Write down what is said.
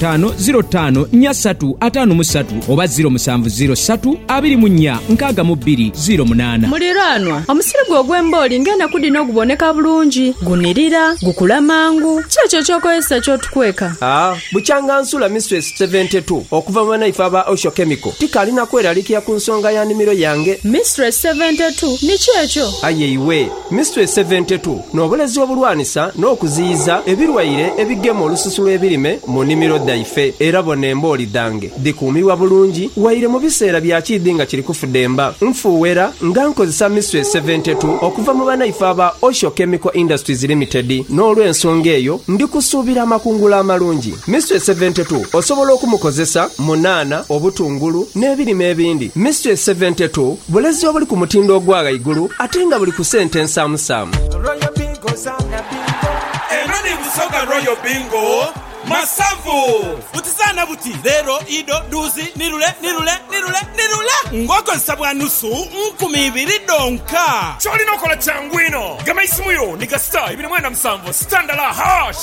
taanu ziro taanu nya satu ataanu mu satu oba ziro musanvu ziro satu abiri mu nya nkaaga mu bbiri ziro munaana. Muliraanwa, omusiri gwo ogw'embooli ng'enaku dhino oguboneka bulungi, gunirira, gukula mangu. Ki ekyo eky'okozesa ky'otukweka? A Bukyanga nsula Mistress Seventy Two okuva mu banaife aba Osho Chemical. Tikaali na kweralikira ku nsonga ya nimiro yange. Mistress Seventy Two, ni ki ekyo? Aye iwe! Mystery Seventy Two, N'obulezi obulwanisa n'okuziyiza ebilwaire ebigema olususu lw'ebirime mu nimiro dhaife. Era bona embooli dhange dhikuumibwa bulungi waire mu biseera bya kiidhi nga kiri kufudemba. Nfuuwera nga nkozesa Mystery Seventy Two okuva mu banaife aba Osho Chemical Industries Limited n'olw'ensonga eyo ndi kusuubira amakungula amalungi. Mystery Seventy Two osobola okumukozesa mu nhanha, obutungulu n'ebirime ebindi. Mystery Seventy Two. Bulezi obuli ku mutindo ogwa ghaigulu ate nga buli ku sente nsaamusaamu. Royal Bingo zaana bingo. Eno ni Busoga Royal Bingo masavu. Buti zaana buti, leero, ido, dhuuzi, nirule, nirule, nirule, nirule ng'okozesa bwa nusu nkumi ibiri dhonka. Ky'olina okola kyangu inho. Gema isimu yo ni ga star ibiri mwenda musanvu, star ndala, hash.